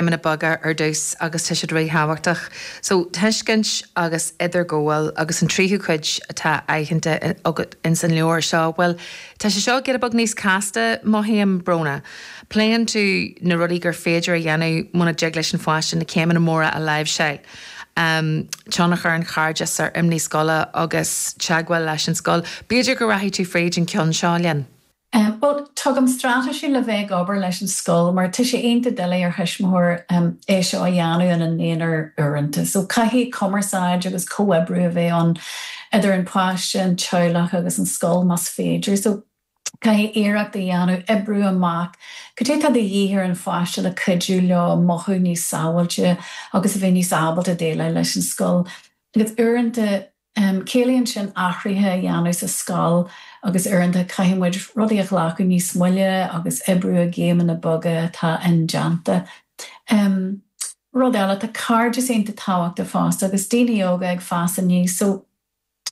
céimeanna beaga ar dtús agus tá siad ríthábhachtach. So, tuiscint agus idirghabháil agus an tríú cuid atá aitheanta agat ins an leabhar seo, bhuel, tá sé seo ag éirí giota beag níos casta, mothaím, a Bhrónagh. Pléann tú na rudaí gur féidir a dhéanamh muna dtig leis an pháiste na céimeanna móra a láimhseáil, em, tionchar an chairdis ar imní scoile agus teagmháil leis an scoil. B'fhéidir go rachfá fríd an ceann seo linn. Em. Bhuel, tugaim straitéisí le bheith ag obair leis an scoil mar tá sé iontach doiligh ar thuismitheoir, em, é seo a dhéanamh ina n-aonar uaireanta. So, caithfidh cumarsáid agus comhoibriú a bheith ann idir an páiste, an teaghlach agus an scoil más féidir. So, caithfidh iarracht a dhéanamh oibriú amach cad é atá de dhíth ar an pháiste le cuidiú leo mothú níos sábháilte agus a bheith níos ábalta déileáil leis an scoil. Agus uaireanta. Ciallaíonn sin athruithe a dhéanamh sa scoil agus uaireanta caithfidh muid rudaí a ghlacadh níos moille agus oibriú i gcéimeanna beaga atá indéanta. Rud eile, tá cairdeas iontach tábhachtach fosta agus daoine óga ag fás aníos so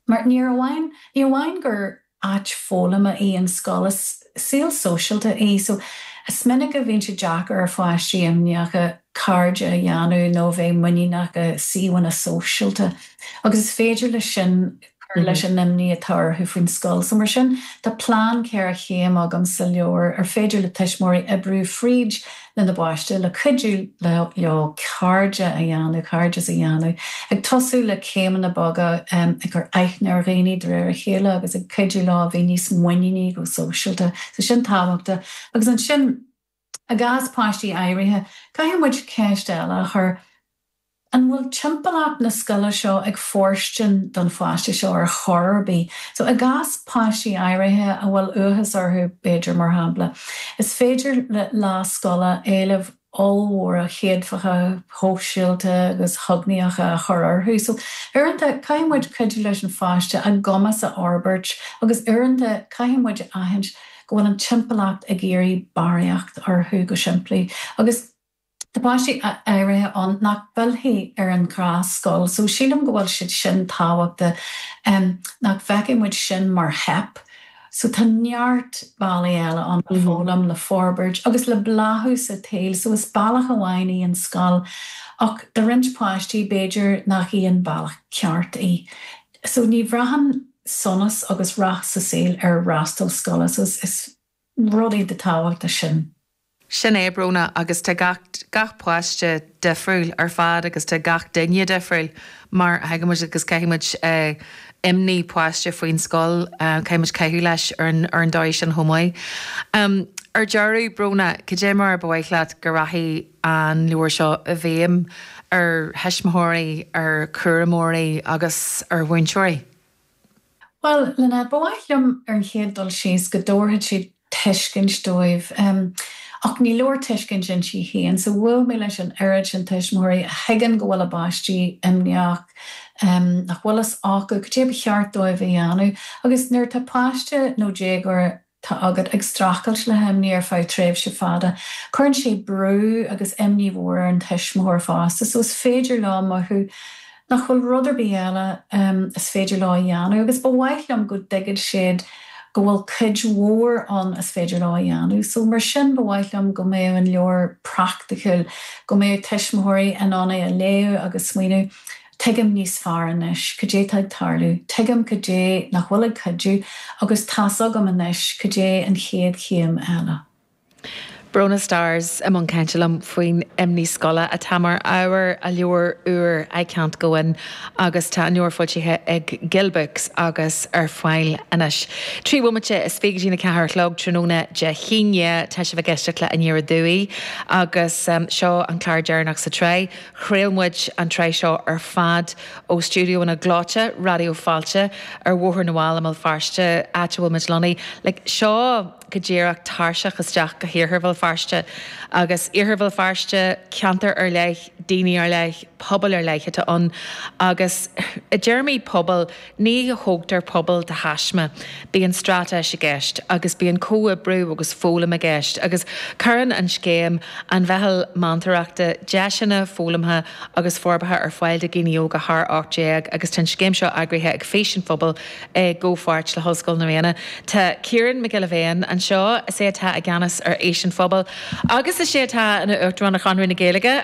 mar níor amháin, ní amháin gur. áit foghlama í an scoil. Is saol sóisialta í so is minic a bhíonn sé deacair ar pháistí imníocha cairde a dhéanamh nó a bheith muiníneach i suíomhanna sóisialta agus is féidir leis sin cur leis an imní atá orthu faoin scoil. So mar sin, tá plean ceithre chéim agam sa leabhar ar féidir le tuismitheoirí oibriú fríd lena bpáiste, le cuidiú leo cairde a dhéanamh, cairdeas a dhéanamh, ag tosú le céimeanna beaga ag cur aithne ar dhaoine de réir a chéile agus ag cuidiú leo a bheith níos muiníní go sóisialta. So sin tábhachtach. Agus ansin, i gcás páistí áirithe, caithfidh muid ceist eile a chur, An bhfuil timpeallacht na scoile seo ag fóirstean don pháiste seo ar chor ar bith? So, i gcás páistí áirithe a bhfuil uathas orthu, b'fhéidir, mar shampla, is féidir le lá scoile éilimh ollmhóra chéadfacha shóisialta agus chognaíocha a chur orthu. So, uaireanta, caithfidh muid cuidiú leis an pháiste a gcumas a fhorbairt agus uaireanta caithfidh muid a aithint go bhfuil an timpeallacht ag iarraidh barraíocht orthu, go simplí. Agus. Tá páistí áirithe ann nach bhfillfidh ar an ghnáthscoil so sílim go bhfuil siad sin tábhachtach nach bhfeicfidh muid sin mar theip. So tá neart bealaí eile ann le foghlaim, le forbairt agus le bláthú sa tsaol so is bealach amháin í an scoil ach do roinnt páistí b'fhéidir nach í an bealach ceart í. So ní bhraitheann sonas agus rath sa saol ar fhreastal scoile so is rud iontach tábhachtach sin. Sin é Bróna agus tá gach gach páiste difriúil ar fad agus tá gach duine difriúil mar a thuigimid agus caithfidh muid imní páiste faoin scoil, caithfidh muid caitheamh leis ar an ar an dóigh sin chomh maith. Ar deireadh, Bróna, cad é mar a ba mhaith leat go rachadh an leabhar seo i bhfeidhm ar thuismitheoirí, ar chúramóirí agus ar mhúinteoirí? Bhuel, Lynette, ba mhaith liom ar an chéad dul síos go dtabharfadh sé tuiscint dóibh. Ach ní leor tuiscint ann féin. So bhuail mé leis an oiread sin tuismitheoirí a thuigeann go bhfuil a bpáistí imníoch, nach bhfuil fhios acu cad é ba cheart dóibh a dhéanamh. Agus nuair atá páiste nó déagóir agat atá ag streachailt le himní ar feadh tréimhse fada. Cuireann sé brú agus imní mhór ar an tuismitheoir fosta so is féidir leo mothú nach bhfuil rud ar bith eile is féidir leo a dhéanamh agus ba mhaith liom go dtuigfeadh siad go bhfuil cuid mhór ann is féidir leo a dhéanamh so mar sin ba mhaith liom go mbeadh an leabhar praiticiúil, go mbeadh tuismitheoirí in ann é a léamh agus smaoineamh. Tuigim níos fearr anois cad é tá ag tarlú. Tuigim cad é nach bhfuil ag cuidiú agus tá's agam anois cad é an chéad chéim eile. Bróna Starrs i mbun cainte liom faoin imní scoile atá mar ábhar a leabhair úir 'I Can't Go In' agus tá an leabhar foilsithe ag Gill Books agus ar fáil anois. Trí bhomaite is fiche go dtí an 4 a chlog tráthnóna Dé hAoine tá sibh ag éisteacht le Aniar Aduaidh agus seo an clár deireanach sa tsraith. Chraol muid an tsraith seo ar fad ó stiúideo in aice linn, Raidió Fáilte, ar Bhóthar na bhFál i mBéal Feirste, áit a bhfuil muid lonnaí. Like, seo go díreach tairseach isteach go hIarthar Bhéal Feirste. Agus Iarthar Bhéal Feirste, ceantar ar leith, daoine ar leith, pobail ar leith atá ann. Agus i dtéarmaí pobail, Ní thógtar pobal de thaisme. Bíonn straitéis i gceist agus bíonn comhoibriú agus foghlaim i gceist agus cuireann an scéim, an Mheitheal Meantóireachta, deiseanna foghlamtha agus forbartha ar fáil do dhaoine óga thar 18 agus tá an scéim seo eagraithe ag Fís an Phobail i gcomhpháirt le hOllscoil na Ríona. Tá Ciarán Mac Giolla Bhéin anseo, is é atá i gceannas ar Fhís an Phobail agus is é atá ina Uachtarán ar Chonradh na Gaeilge.